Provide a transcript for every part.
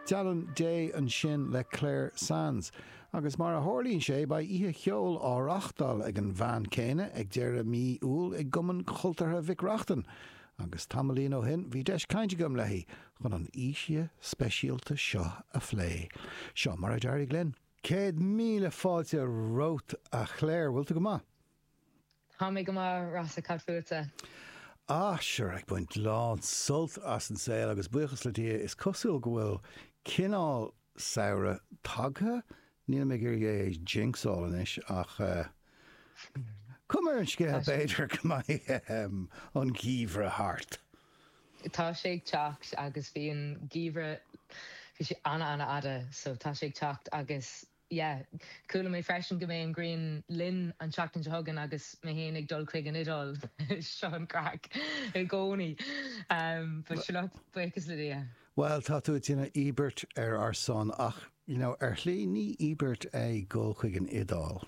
Dialann Dé ansin le Clare Sands. Agus mar a tharlaíonn sé, beidh oíche cheoil á reáchtáil ag an mbean chéanna ag deireadh mhí Iúil i gCumann Chultúrtha Mhic Reachtain, agus tamaillín ó shin bhí deis cainte agam léi chun an oíche speisialta seo a phlé. Seo mar a d'éirigh linn. Céad míle fáilte romhat, a Chlare. Bhfuil tú go maith? Tá mé go maith, Rossa, cad fútsa? Ah, sure, ag baint lán sult as an saol agus buíochas le Dia is cosúil go bhfuil cineál samhradh tagtha, nílim ag iarraidh é a jinxáil anois ach cuma ar an scéal b'fhéidir go mbeidh an geimhreadh thart. Tá sé ag teacht agus bhí an geimhreadh, bhí sé an-an-fhada so tá sé ag teacht agus Yeah. Chuala mé freisin go mbeidh an ghrian linn an tseachtain seo chugainn agus mé féin ag dul chuig an Iodáil. Seo an craic i gcónaí. But sure look, buíochas le Dia. Bhuel, tá tú ag déanamh íobairt ar ár son ach, you know, ar shlí, ní íobairt é dul chuig an Iodáil.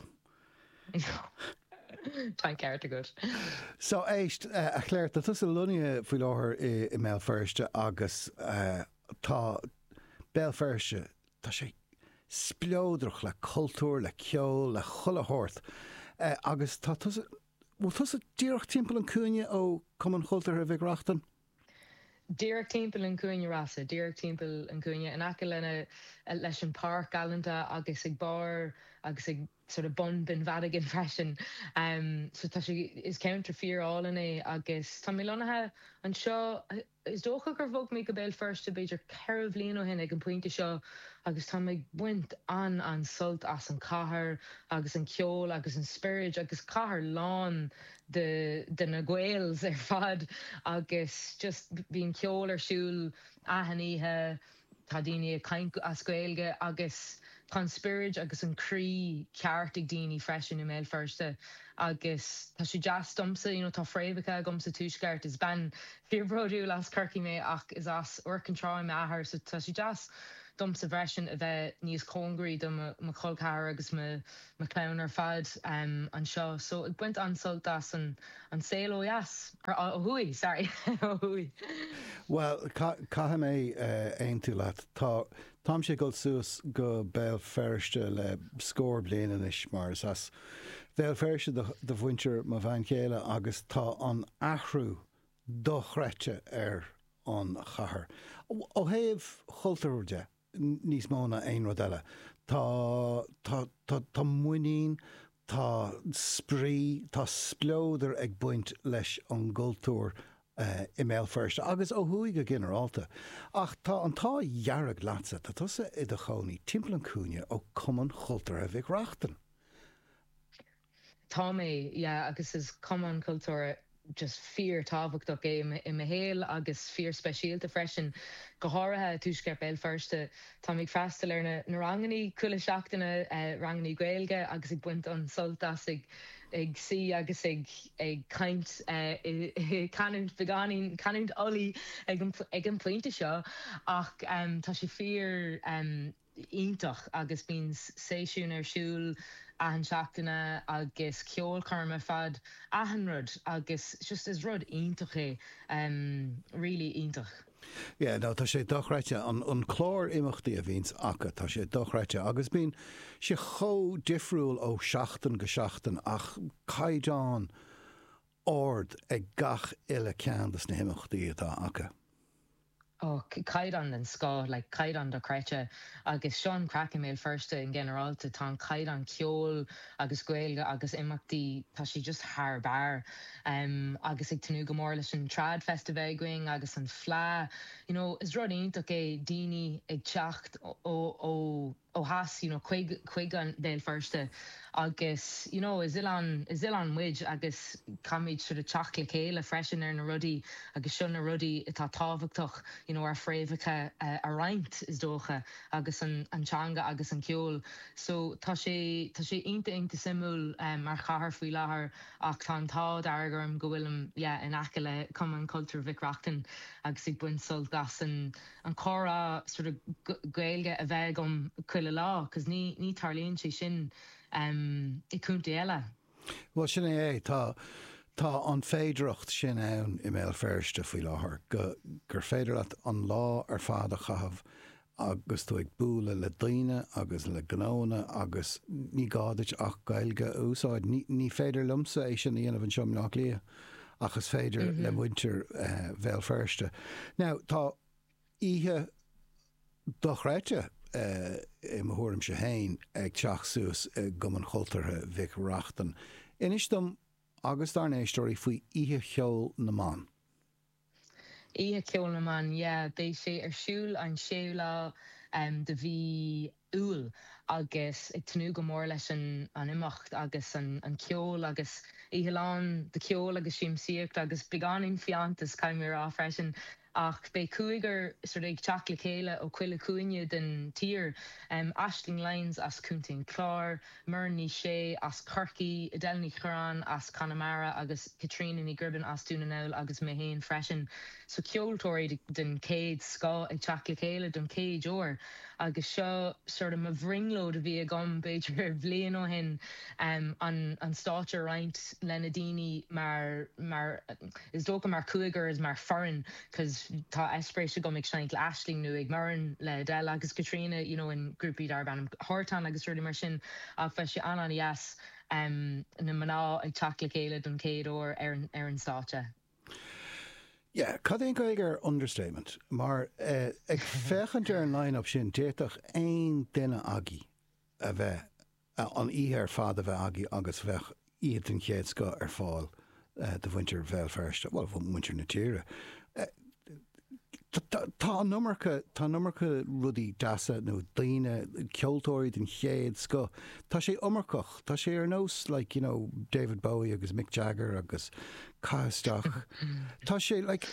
Tá an ceart agat. So, éist, a Chlare, tá tusa lonnaithe faoi láthair i mBéal Feirste agus tá Béal Feirste Tá sé spleodrach le cultúr, le ceol, le chuile shórt. Agus tá tusa, bhfuil tusa díreach timpeall an chúinne ó Chumann Chultúrtha Mhic Reachtain? Díreach timpeall an chúinne, Rossa, díreach timpeall an chúinne, in aice leis an pháirc galánta agus ag barr agus ag. sort of bun den bheairic ann freisin so tá sé is ceantar fíorálainn é agus tá mé lonnaithe anseo is dócha gur bhog mé go Béal Feirste b'fhéidir ceithre bhliain ó shin ag an pointe seo agus táim ag baint an-an-sult as an cathair agus an ceol agus an spioraid agus cathair lán de de na gaels ar fad agus just bíonn ceol ar siúl achan oíche Tá daoine ag caint as Gaeilge agus tá an spioraid agus an croí ceart ag daoine freisin i mBéal Feirste agus tá sé deas domsa, you know tá fréamhacha agam sa Tuaisceart, is bean fíorbhródúil as Corcaigh mé ach is as Iúr Cinn Trá m'athair so tá sé deas domsa freisin a bheith níos cóngaraí do mo cholcheathrair agus mo mo chlann ar fad anseo so ag baint an-sult as an saol ó dheas. ó thuaidh, sorry, ó thuaidh. Bhuel, caithfidh mé aontú leat. Tá, táimse ag dul suas go Béal Feirste le scór bliain anois mar is as Béal Feirste do mhuintir mo bhean chéile agus tá an t-athrú dochreidte ar an chathair, ó thaobh chultúir de. níos mó ná aon rud eile. Tá, tá, tá, tá muinín, tá spraoi, tá spleodar ag baint leis an gcultúr i mBéal Feirste agus ó thuaidh go ginearálta. Ach tá an t-ádh dhearg leatsa, tá tusa i do chónaí timpeall an chúinne ó Cumann Chultúrtha Mhic Reachtain. Tá mé, yeah, agus is cumann cultúrtha just fíor-tábhachtach é i mo shaol agus fíorspeisialta freisin, go háirithe i dtuaisceart Béal Feirste. Táim ag freastal ar na rangannaí chuile seachtaine, rangannaí Gaeilge, agus ag baint an-sult as ag suí agus ag caint i canúint beagáinín, canúint Uladh ag an bpointe seo, ach tá sé fíor. iontach agus bíonn seisiúin ar siúl achan seachtaine agus ceolchoirm ar fad achan rud agus just is rud iontach é really iontach. Yeah no tá sé dochreidte an clár imeachtaí a bhíonns acu tá sé dochreidte agus bíonn sé chomh difriúil ó sheachtain go seachtain ach caighdeán ard ag gach uile ceann dos na himeachtaí atá acu. Och, caighdeán den scoth, like caighdeán dochreidte. Agus seo an chraic i mBéal Feirste in ghinearálta, tá an caighdeán ceoil agus Gaeilge agus imeachtaí, tá sé just thar barr. Agus ag tnúth go mór leis an Trad Festival againn agus an Fleadh. You know, is rud iontach é daoine ag teacht ó. ó theas, you know chuig, chuig an Bhéal Feirste agus you know is oileán, is oileán muid agus caithfimid sort of teacht le chéile freisin ar na rudaí agus seo na rudaí atá tábhachtach you know ár bhfréamhacha a roinnt is dócha agus an, an teanga agus an ceol so tá sé, tá sé iontach, iontach suimiúil mar chathair faoi láthair ach tá an t-ádh dearg orm go bhfuilim yeah in aice le Cumann Cultúir Mhic Reachtain agus ag baint sult as an an comhrá sort of Gaeilge a bheith agam chuile lá cos ní ní tarlaíonn sé sin i gcontae eile. Bhuel, sin é é. Tá tá an féidearthacht sin ann i mBéal Feirste faoi láthair go gur féidir leat an lá ar fad a chaitheamh agus tú ag bualadh le daoine agus le gnóanna agus ní gá duit ach Gaeilge a úsáid. Ní ní féidir liomsa é sin a dhéanamh anseo i mBleá Cliath. ach is féidir le muintir Bhéal Feirste. Now, tá oíche dochreidte, i mo thuairimse féin, ag teacht suas i gCumann Chultúrtha Mhic Reachtain. Inis dom agus dár n-éisteoirí faoi Oíche Cheoil na mBan. Oíche Cheoil na mBan, yeah. Beidh sé ar siúl an séú lá de mhí Iúil agus ag tnúth go mór leis an imeacht agus an ceol agus oíche lán de cheol agus siamsaíocht agus beagáinín fiántas caithfidh mé a rá freisin. Ach beidh cúigear ag teacht le chéile ó chuile chúinne den tír, Aisling Lyons as Co. an Chláir, Muireann Ní Shé as Corcaigh, Edel Ní Chuireáin as Conamara agus Caitríona Ní Ghribin as Dún na nGall agus mé féin freisin. So ceoltóirí den chéad scoth ag teacht le chéile don chéad uair agus seo sórt mo bhrionglóid a bhí agam b'fhéidir bhliain ó shin an stáitse a roinnt leis na daoine mar mar is dócha mar chúigear mar foireann. cos Tá eispéireas agam ag seinnt le Aisling nó ag Muireann, le Edel agus Caitríona you know in grúpaí darb ainm Hartán agus rudaí mar sin ach beidh sé an-an-dheas em na mná ag teacht le chéile don chéad uair ar an ar an stáitse. Yeah, cad é an Ghaeilge ar understatement? Mar eh ag féachaint ar an line-up sin d'fhéadfadh aon duine agaibh a bheith ea an oíche ar fad a bheith agaibh agus bheadh oíche den chéad scoth ar fáil do mhuintir Bhéal Feirste, bhuel, muintir na tíre. Tá an iomarca, tá an iomarca rudaí deasa nó daoine, ceoltóirí den chéad scoth, tá sé iomarcach, tá sé ar nós like, you know, David Bowie agus Mick Jagger agus caith isteach. Tá sé like,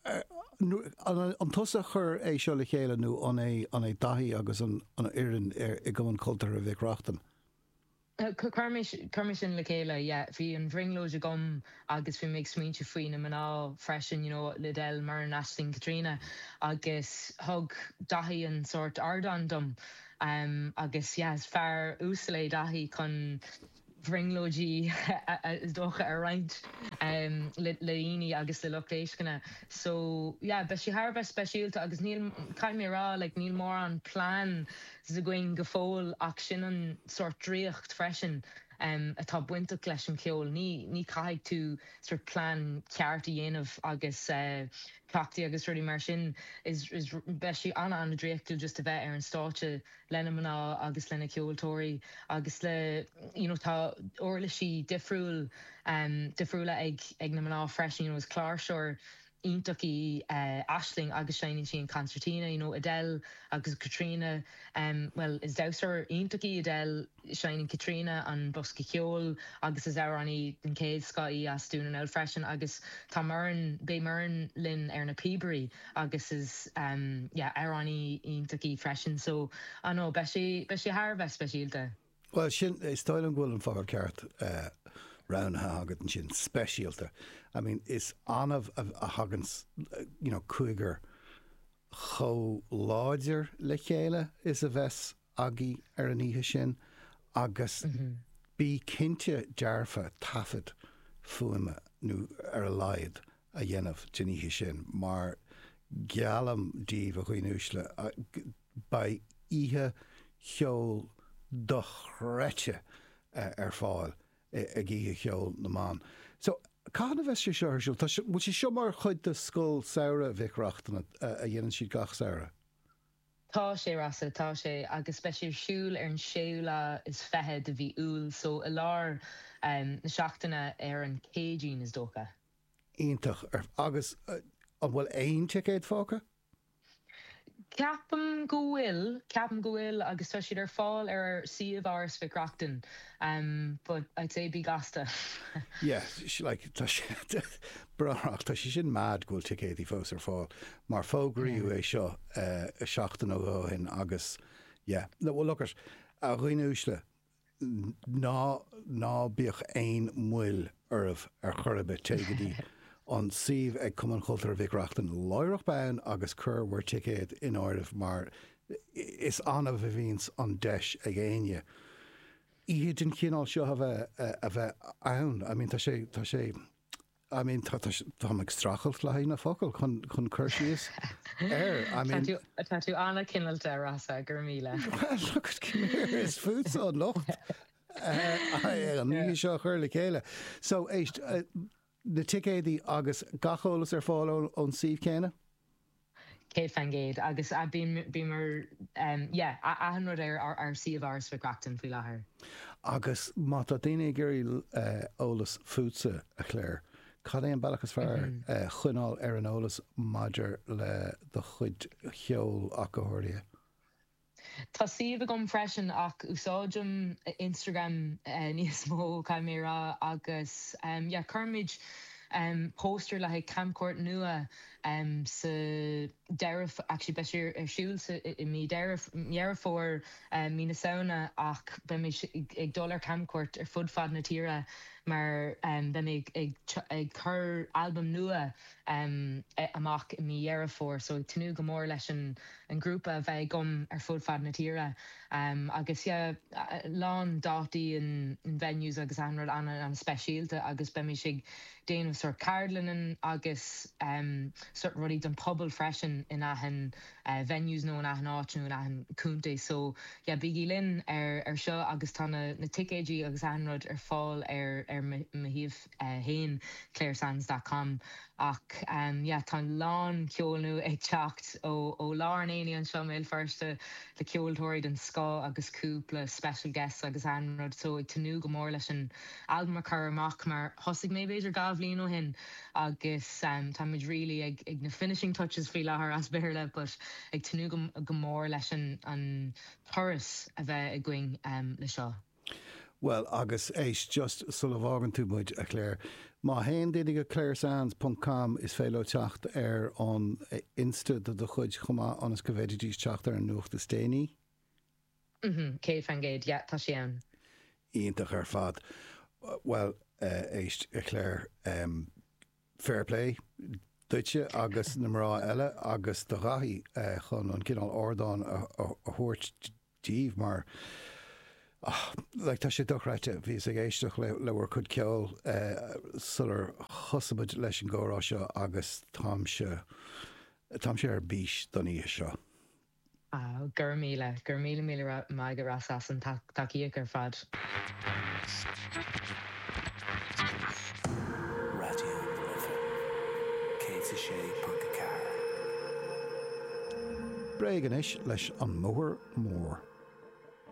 An tusa a chuir é seo le chéile nó an é Daithí agus an fhoireann i gCumann Cultúrtha Mhic Reachtain? Chuir mé sin le chéile, yeah. Bhí an bhrionglóid agam agus bhí mé ag smaointeamh faoi na mná freisin, you know, le Edel, Muireann, Aisling, Caitríona agus thug Daithí an sórt ardán dom agus, yeah, is fear uasal é Daithí chun, bhrionglóidí, is dócha, a roinnt le daoine agus le lucht éisteachta. So, yeah, beidh sí thar a bheith speisialta agus níl, caithfidh mé a rá, like, níl mórán plean againn go fóill ach sin an sórt draíocht freisin atá bainteach leis an cheol. Ní, ní caithfidh tú sórt plean ceart a dhéanamh agus cleachtaí agus rudaí mar sin. Is, is, beidh sí ana, ana draíochtúil just a bheith ar an stáitse leis na mná agus leis na ceoltóirí agus le you know tá uirlisí difriúil difriúla ag ag na mná freisin you know is cláirseoir iontach í Aisling agus seinneann sí an concertina you know Edel agus Caitríona bhuel is damhsóir iontach í Edel seinneann Caitríona an bosca ceoil agus is amhránaí den chéad scoth í as Dún na nGall freisin agus tá Muireann beidh Muireann linn ar na píobairí agus is, yeah, amhránaí iontach í freisin, so, I know, beidh sé, beidh sé thar a bheith speisialta. Bhuel, sin, is dóigh liom go bhfuil an focal ceart roghnaithe agat ansin, speisialta. I mean, is annamh a thagann, you know, cúigear chomh láidir le chéile is a bheas agaibh ar an oíche sin agus bí cinnte dearfa taifead fuaime, ar a laghad, a dhéanamh den oíche sin mar geallaim daoibh, a dhaoine uaisle, beidh oíche cheoil dochreidte ar fáil ag Oíche Cheoil na mBan. So, cathain a bheas sé seo ar siúl? Tá sé, bhfuil sé seo mar chuid de Scoil Samhraidh Mhic Reachtain a dhéanann siad gach samhradh? Tá sé, Rossa, tá sé, agus beidh sé ar siúl ar an séú lá is fiche de mhí Iúil, so i lár na seachtaine ar an Céadaoin, is dócha. Iontach. Agus an bhfuil aon ticéad fágtha? Ceapaim go bhfuil, ceapaim go bhfuil agus tá siad ar fáil ar suíomh Áras Mhic Reachtain but I'd say bí gasta. Yeah, like tá sé yeah, tá sé sin mad go bhfuil ticéidí fós ar fáil. mar fógraíodh é seo seachtain ó shoin agus yeah, no, well look it, a dhaoine uaisle, ná, ná bíodh aon mhoill oraibh ar chor ar bith, téigh go dtí an suíomh ag Cumann Cultúrtha Mhic Reachtain láithreach bonn agus cuir bhur ticéad in áirithe mar is annamh a bhíonns an deis ag éinne oíche den chineál seo a bheith, a bheith ann, I mean tá sé, tá sé. I mean, tá, tá, táim ag streachailt le haghaidh na focal chun, chun cur síos air, I mean. Tá tú, tá tú an-chineáilte, Rossa, go raibh míle. Well, look it, come here, is fútsa an locht ar an oíche seo a chur le chéile. So, éist, na ticéadaí agus gach eolas ar fáil ón suíomh céanna? Cinnte, yeah. Agus yeah, achan rud ar shuíomh Áras Mhic Reachtain faoi láthair. Agus má tá daoine ag iarraidh eolas fútsa, a Clare, cad é an bealach is fearr coinneáil ar an eolas maidir le do chuid cheoil ach go háirithe? Tá suíomh agam freisin ach úsáidim Instagram níos mó caithfidh mé a rá agus yeah cuirfidh mé póstaer le haghaidh camchuairt nua suas, sa deireadh, actually beidh sé ar siúl sa, i mí Dheireadh, Dheireadh Fómhair, mí na Samhna ach beidh mé ag dul ar camchuairt ar fud fad na tíre mar beidh mé ag ag ag cur albam nua amach i mí Dheireadh Fómhair so ag tnúth go mór leis an an grúpa a bheith agam ar fud fad na tíre agus yeah lán dátaí and venues agus achan rud ana ana speisialta agus beimís ag déanamh sort ceardlanna agus sort rudaí don pobal freisin in achan venues nó in achan áit nó in achan contae so yeah bígí linn ar ar seo agus tá na na ticéidí agus achan rud ar fáil ar ar mo shuíomh. fhéin, claresands dot com Ach yeah tá a lán ceoil nua ag teacht ó ó lár an aonaigh anseo i mBéal Feirste le ceoltóirí den scoth agus cúpla special guests agus an rud so ag tnúth go mór leis an albam a chur amach mar thosaigh mé b'fhéidir dhá bhliain ó shin agus tá muid really ag ag na finishing touches faoi láthair as Béarla but ag tnúth go go mór leis an an turas a bheith againn le seo. Bhuel, agus éist, just sula bhfágann tú muid, a Clare, má théann daoine go claresands ponc com is féidir leo teacht ar an insta do do chuid chomh maith ionas go bhféadfaidís teacht ar an nuacht is déanaí. Mm-hmm, céad faoin gcéad, yeah, tá sí ann. Iontach ar fad. Bhuel, éist, a Clare, fair play duitse agus na mná eile agus do Dhaithí chun an cineál ardáin a thabhairt daoibh mar, ah, like, tá sé dochreidte, bhíos ag éisteacht le, le bhur cuid ceoil eh sular thosaigh muid leis an gcomhrá seo agus táimse, táimse ar bís don oíche seo. Ah, go raibh míle, go raibh míle míle maith agat Ross as an tacaíocht ar fad. Raidió na Life 106.4. Bréag anois leis an mbóthar mór.